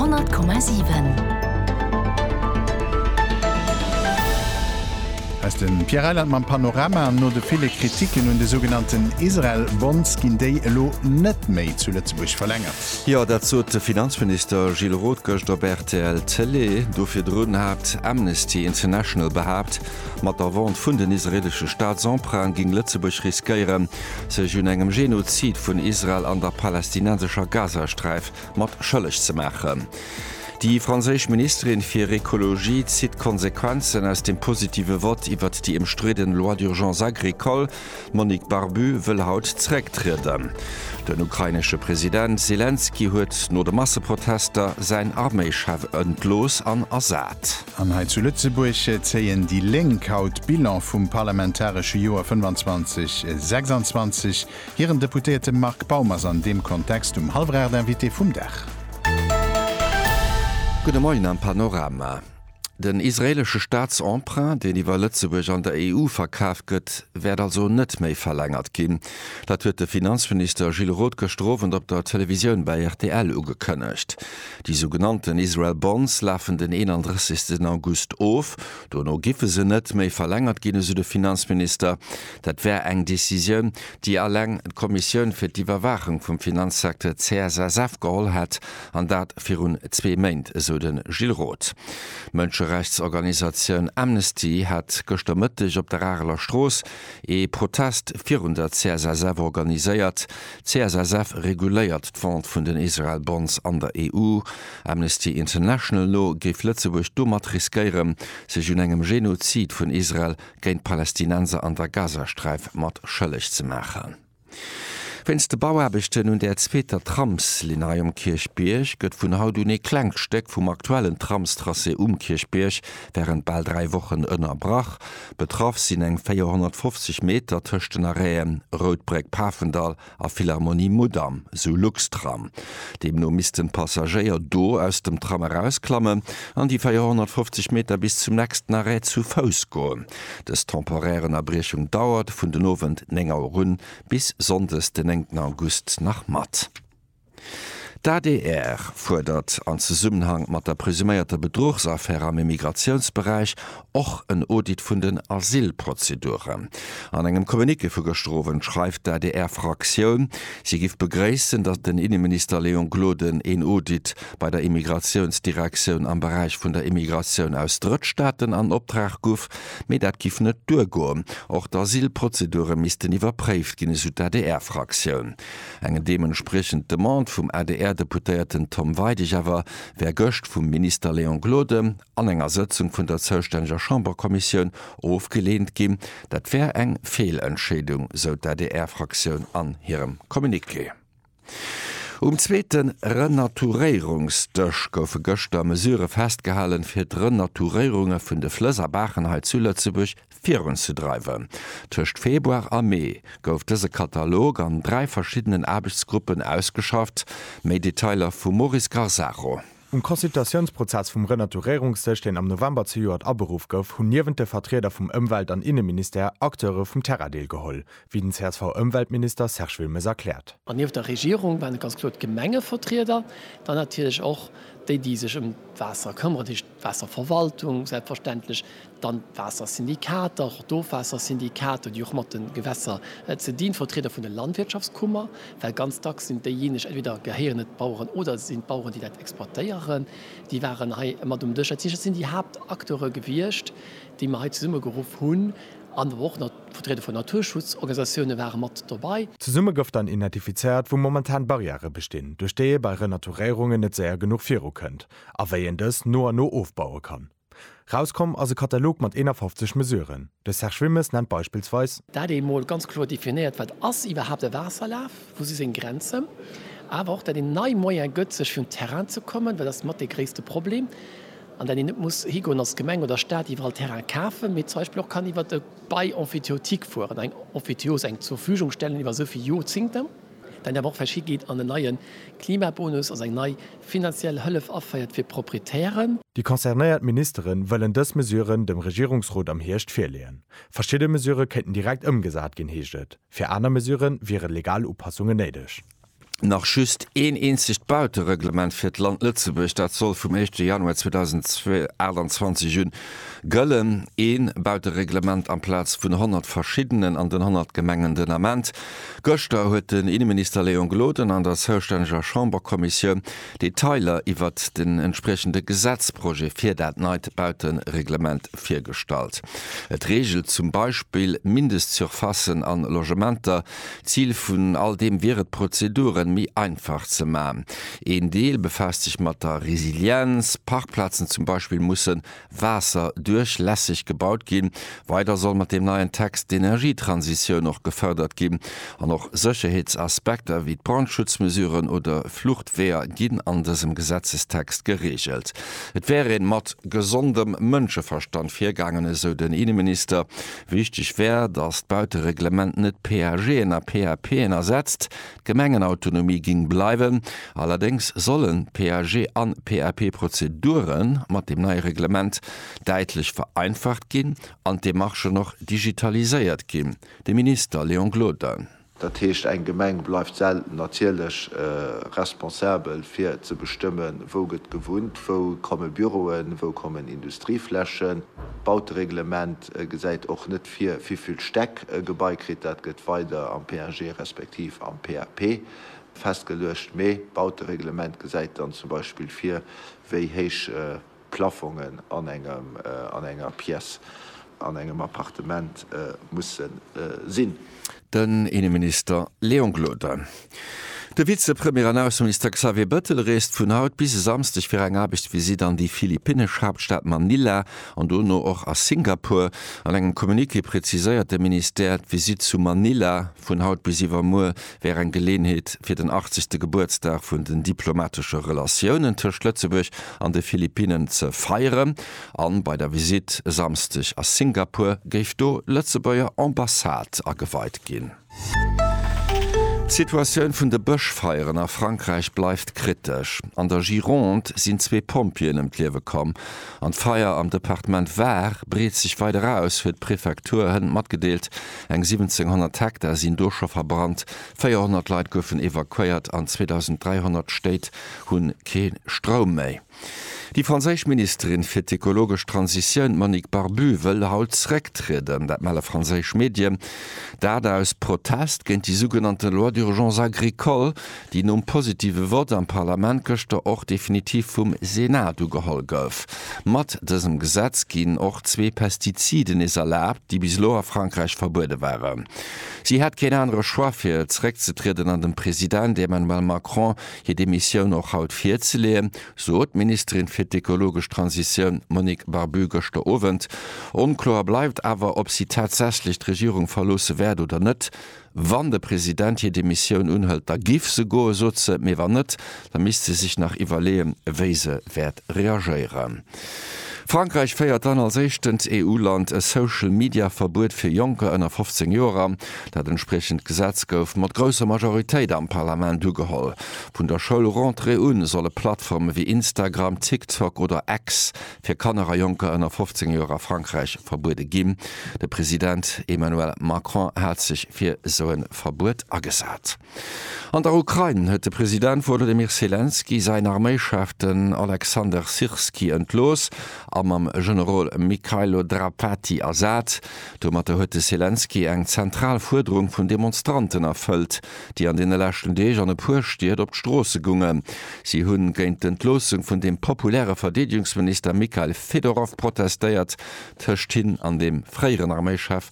100,7. Aus den Pierre Reiland mam Panorama. No de ville Kritiken un de sougenannten Israel Bonds ginn déi elo net méi zu Lëtzebuerg verlängert. Jo, dat sot de Finanzminister Gilles Roth gëscht op rtl Télé. Do virdrun hat Amnesty International behaapt, mat der Vente vun den israeelesche Staatsemprunten géing Lëtzebuerg riskéieren, sech un engem Genozid vun Israel an der palästinensescher Gazasträif mat schëlleg ze maachen. Déi franséisch Ministerin fir Ecologie zitt d'Konsequenzen aus dem positive Vott iwwert déi ëmstridden Loi d'urgence agricole. D'Monique Barbu wëll haut zerécktrieden. Den ukrainesche President Selenskyj huet no de Masseprotester säin Arméichef entlooss an ersat. An hei zu Lëtzebuerg zéien déi Lénk haut Bilan vum parlamentaresche Joer 25, 26. Hiren Deputéierte Marc Baum ass an deem Kontext um hallwer 8 Invité vum Dag. Gudde Moien am Panorama. Den israeelesche Staatsemprunt, deen iwwer Lëtzebuerg an der EU verkaf gëtt, wäert also net méi verlängert ginn. Dat huet de Finanzminister Gilles Roth gëschter Owend op der Televisioun bei rtl ugekënnegt. Déi sou genannten Israel Bonds lafen den 31 August of. Dono giffe se net méi verlängert ginn, esou de Finanzminister. Dat wär eng Decisioun, déi alleng d'Kommissioun fir d'Iwwerwaachung vum Finanzsecteur CSSF geholl hätt, an dat virun zwee Méint, esou de Gilles Roth. D'Mënscherechtsorganisatioun Amnesty hat gëschter Mëtteg op der Areler Strooss ee Protest virun der CSSF organiséiert. Csf reguléiert d'Vente vun den Israel Bonds an der EU. Amnesty International no géif Lëtzebuerg domat riskéieren, sech un engem Genozid vun Israel géint d'Palästinenser an der Gazasträif mat schëlleg ze maachen. Wéinst de Bauaarbechten un der zweeter Tramslinn hei um Kierchbierg gëtt vun haut un ee klengt Stéck vum aktuellen Tramstracé um Kierchbierg wärend bal dräi Wochen ënnerbrach. Betraff sinn eng 450 Meter tëscht den Arrêten Routbréck Pafendall a Philharmonie Mudam, sou Luxtram. Deemno missten d'Passagéier do aus dem Tram erausklammen an déi 450 Meter bis zum nächsten Arrêt zu Fouss goen. Dës temporär Ënnerbriechung dauert vun den Owend 9 Auer un bis Sonndes den 9 August nach mat. D'adr fuerdert an Zesummenhang mat der presuméierter Bedruchsaffär am Immigratiounsberäich och en Audit vun den Asylprozeduren. An engem Communiqué vu gëschter Owend schreift d'ADR-Fraktioun, si giff begréissen, datt den Inneminister Léon Gloden een Audit bei der Immigratiounsdirektioun am Beräich vun der Immigratioun aus Drëttstaaten an Optrag guff, mee dat giff net duergoen. Och d'Asylprozedure missten iwwerpréift ginn, esou d'ADR-Fraktioun. Eng deementspriechend Demande vum ADR-Deputéierten Tom Weidig awer wär gëscht vum Minister Léon Gloden an enger Sëtzung vun der zoustänneger Chamberkommissioun ofgeleent ginn. Dat wär eng Feelentscheedung, sou d'ADR-Fraktioun an hirem Communiqué. Um zweete Renaturéierungsdësch goufe gëschter Mesurë festgehalen, fir d'Renaturéierunge vun de Flëss a Baachen hei zu Lëtzebuerg virunzedreiwen. Tëscht Februar a Mee gouf dëse Katalog an dräi verschiddenen Aarbechtsgruppen ausgeschafft, méi Detailer vum Maurice Garzaro. Um Consultatiounsprozess vum Renaturéierungssëch, deen am November zejoert aberuff gouf, hunn niewent de Vertrieder vum Ëmwelt an Inneministère Acteure vum Terrain deelgeholl, wéi den CSV-Ëmweltminister Serge Wilmes erkläert. An nieft der Regierung waren et ganz kloer d'Gemengevertrieder, dann natierlech och déi, déi sech ëm d'Waasser këmmeren, D'Waasserverwaltung selbstverständlech, dann d'Waassersyndikater, och d'Ofwaassersyndikater, déi och mat de Gewässer ze dinn, d'Vertrieder vun de Landwirtschaftskummer, well ganz dacks sinn déijeeneg, entweder gehéieren et d'Baueren oder et sinn d'Baueren, déi dat exploitéieren, déi waren hei mat um Dësch. Dat heescht, dat sinn déi Haaptacteure gewiescht, déi mer hei zesummegeruff hunn, an awer och nach d'Vertrieder vun Naturschutzorganisatioune ware mat dobäi. Zesumme gouf dann identifizéiert, wou momentan Barrièrë bestinn, duerch déi ee bei Renaturéierungen net séier genuch virukënnt, a wéi een dës no a no ofbaue kann. Rauskomm ass e Katalog mat 51 Mesuren. De Serge Wilmes nennt beispillsweis. Dat ee mol ganz kloer definéiert, wat ass iwwerhaapt e Waasserlaf, wou si seng Grenzen, awer och dat een nei Moyen gëtt, sech vun Terrain ze kommen, well dat ass mat dee gréisste Problem, an dat een net muss higoen als Gemeng oder Staat iwwerall Terrain kafen, mee zum Beispill och kann iwwert e Bail emphytéotique fueren, eng Emphytéose, eng Zurvügungstellen iwwer esou vill Jorzingter. Dann awer och verschi geet an en neie Klimabonus, also eng nei finanziell Hëllef aféiert fir Proprietären. Déi concernéiert Ministere wëllen dës Mesuren dem Regierungsrot am Hierscht virleeën. Verschidde Mesurë kéinten direkt ëmgesat ginn, heescht et. Fir aner Mesurë wiere legal Upassungen néideg. Nach just een eenzegt Bautereglement fir d'Land Lëtzebuerg, dat soll vum éischte Januar 2028 un gëllen. Ee Bautereglement amplaz vun honnert verschiddenen an den honnert Gemengen. Den Ament Gëschter huet den Inneminister Léon Gloden an der zoustänneger Chamberkommissioun Detailer iwwert den entspriechende Gesetzprojet fir dat neit Bautereglement virgestallt. Et reegelt zum Beispill Mindestsurfacen a Logementer. Zil vun all deem wier et, d'Prozeduren méi einfach ze maachen. Een Deel befaasst sech mat der Resilienz, Parkplazen zum Beispill mussen waasserduerchlässeg gebaut ginn. Weider soll mat deem neien Text d'Energietransitioun och gefërdert ginn an och Sécherheetsaspekter wéi d'Brandschutzmesuren oder Fluchtweeër ginn an dësem Gesetzestext gereegelt. Et wär ee mat gesondem Mënscheverstand virgaangen, esou den Inneminister. Wichteg wär, datt d'Bautereglement net PAGen a PAPen ersetzt, D'Gemengenautonomie ging bleiwen, allerdéngs sollen PAG an PAP-Prozeduren mat dem neie Reglement däitlech vereinfacht ginn an d'Demarchen och digitaliséiert ginn, de Minister Léon Gloden. Dat heescht, eng Gemeng bleift selten natierlech responsabel fir ze bestëmmen, wou gëtt gewunnt, wou komme Büroen, wou kommen Industrieflächen. D'Bautereglement gesäit och net fir wéivill Stäck e Gebai kritt, dat gëtt weider am PAG respektiv am PAP festgeluecht, mee d'Bautereglement gesäit dann zum Beispill vir, wéi héich d'Plaffongen an engem, an enger Pièce, an engem Appartement musse sinn. Den Inneminister Léon Gloden. De Vizepremier an Ausseminister Xavier Bëttel reest vun haut bis e Samsdeg fir eng Aarbechtsvisitt an déi philippinnesch Haaptstad Manila an dono och a Singapur. An engem Communiqué preziséiert de Ministère, d'Visitt zu Manila vun haut bis iwwermuer wär eng Geleeënheet fir den 80. Gebuertsdag vun den diplomatesche Relatiounen tëscht Lëtzebuerg an de Philippinnen ze feieren. An bei der Visitt e Samsdeg a Singapur géif do Lëtzebuerger Ambassade ageweit ginn. D'Situatioun vun de Bëschfeieren a Frankräich bleift kritesch. An der Gironde sinn zwee Pompjeeën ëm d'Liewe komm an d'Feier am Departement Var breet sech weider aus, huet d'Prefektur hënt matgedeelt. Eng 1700 Hektar sinn do scho verbrannt, 400 Leit goufen evakuéiert an 2.300 Stéit hu kee Stroum méi. Déi franséisch Ministerin fir d'ekologesch Transitioun, d'Monique Barbut, wëll haut zrécktrieden. Dat melle franséisch Medie, dat aus Protest géint déi sougenannte Loi d'urgence agricole, déi nom positive Vott am Parlament gëschter och definitiv vum Senat ugeholl gouf. Mat dësem Gesetz ginn och zwee Pestiziden nees erlaabt, déi bis elo a Frankräich verbuede waren. Si hätt keen anere Choix fir zréckzetrieden an dem President Emmanuel Macron hir Demissioun och haut virzeleeën, sot d'Ministerin fir d'ekologesch Transitioun Monique Barbu gëschter Owend. Onkloer bleift awer, ob si tatsächlech d'Regierung verloosse wäert oder net. Wann de President hir Demissioun unhëlt, da giff se goen, sot se. Mee wann net, da misst se sech nach iwwerleeën, wéi se wäert reagéieren. Frankräich féiert dann als éischtent EU-Land e Social-Media-Verbuet fir Jonker ënner 15 Joer an. Dat entspriechend Gesetz gouf mat grousser Majoritéit am Parlament ugeholl. Vun der Schoulrentrée un solle Plattforme wéi Instagram, TikTok oder X fir Kanner a Jonker ënner 15 Joer a Frankräich verbuede ginn. De President Emmanuel Macron hat sech fir esou e Verbuet agesat. An der Ukrain huet de President Wolodymyr Selenskyj säin Arméischef, den Oleksandr Syrskyi, entlooss a mam Generol Mykhailo Drapatyi ersat. Domatter huet de Selenskyj eng zentral Fuerderung vun Demonstranten erfëllt, déi an deene leschten Deeg an e puer Stied op d'Stroosse gungen. Si hu géint d'Entloossung vun dem populäre Verdeedegungsminister Mykhail Fedorov protestéiert, tëscht hinn an dem fréieren Arméischef,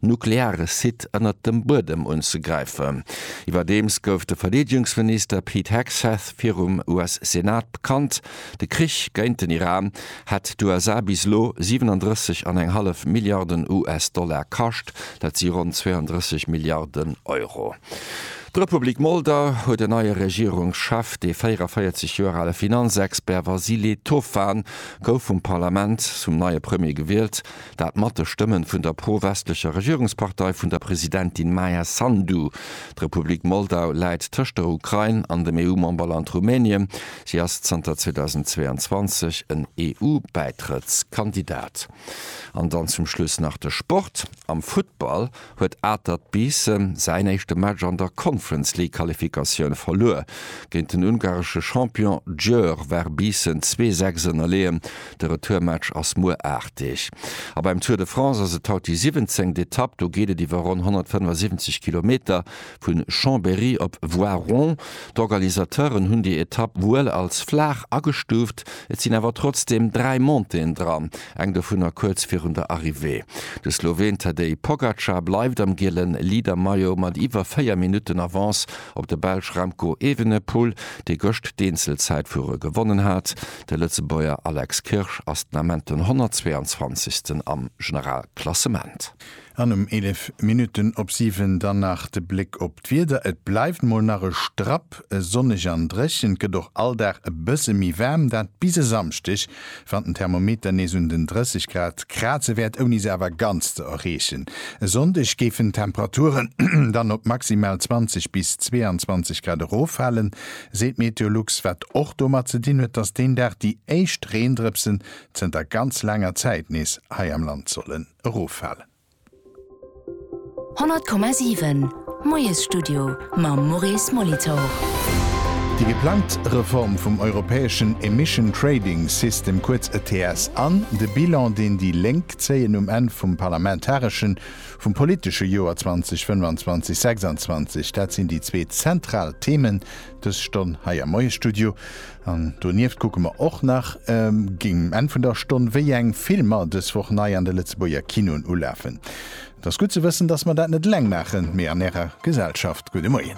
nukleare Site ënnert dem Buedem unzegräifen. Iwwerdeems gouf de Verdeedegungsminister Pete Hegseth virum US-Senat bekannt, de Krich géint den Iran hätt d'USA bis elo 37 an eng hallef Milliarden US-Dollar kascht, dat si ronn 32 Milliarden Euro. D'Republik Moldau huet en neie Regierungschef, dee 44 Joer ale Finanzexpert Vasile Tofan gouf vum Parlament zum neie Premier gewielt, Dat mat de Stëmmen vun der pro-westlecher Regierungspartei vun der Presidentin Maia Sandu. D'Republik Moldau läit tëscht der Ukrain an dem EU-Memberland Rumänien. Si ass zanter 2022 en EU-Bäitrëttskandidat. An dann zum Schluss nach de Sport. Am Futtball huet Atert Biissen säin éischte Match an der Conference-League-Qualifikatioun verluer. Géint den ungaresche Champion Győr war Biissen zwee Säcks ënnerleeën. De Retourmatch ass muer 8 Deeg. A beim Tour de France ass et haut déi 17. Etapp. Do geet et iwwer ronn 175 Kilometer. Vu Chambéry op Voiron. D'Organisateuren hunn déi Etapp wuel als flaach agestuuft, et sinn awer trotzdeem dräi Montéen dran, eng dovunner kuerz virun der Arrivée. De Sloween Tadej Pogacar bleift am giele Leader-Maillot mat iwwer 4 Minutten Avance op de Belsch Remco Evenepoel, dee gëscht d'Eenzelzäitfuere gewonnen hat. De Lëtzebuerger Alex Kirsch ass den Ament den 122. am Generalklassement. An um 11 Minutten op 7 dann nach de Bléck op d'Wieder, et bleift mol nach e Strapp sonneg an dréchen, et gëtt och all Dag e bësse méi waarm, dat bis e Samschdeg, wann den Thermometer nees un den 30 Grad kraze wäert, ouni se awer ganz ze erreechen. E Sonndeg géifen d'Temperaturen dann op maximal 20 bis 22 Grad eroffalen, seet d'Meteolux, wat och domat ze dinn huet, dass deen Dag déi éischt Reendrëpsen zënter ganz laanger Zäit nees hei am Land sollen. eroffalen. 100,7 Moiesstudio mam Maurice Molitor. Déi geplangt Reform vum europäeschen Emission Trading System, kuerz ETS, an de Bilan, deen déi Lénk zéien um Enn vum parlamentareschen, vum politesche Joer 2025, 26, dat sinn déi zwee zentral Themen Dës Stonn hei am Moiesstudio. An donieft kucke mer och nach géingt Enn vun der Stonn, wéi eng Filmer dës Woch nei an de Lëtzebuerger Kinoen ulafen. Et ass gutt ze wëssen, dass mer dat net eleng maachen, mee an Ärer Gesellschaft. Gudde Moien.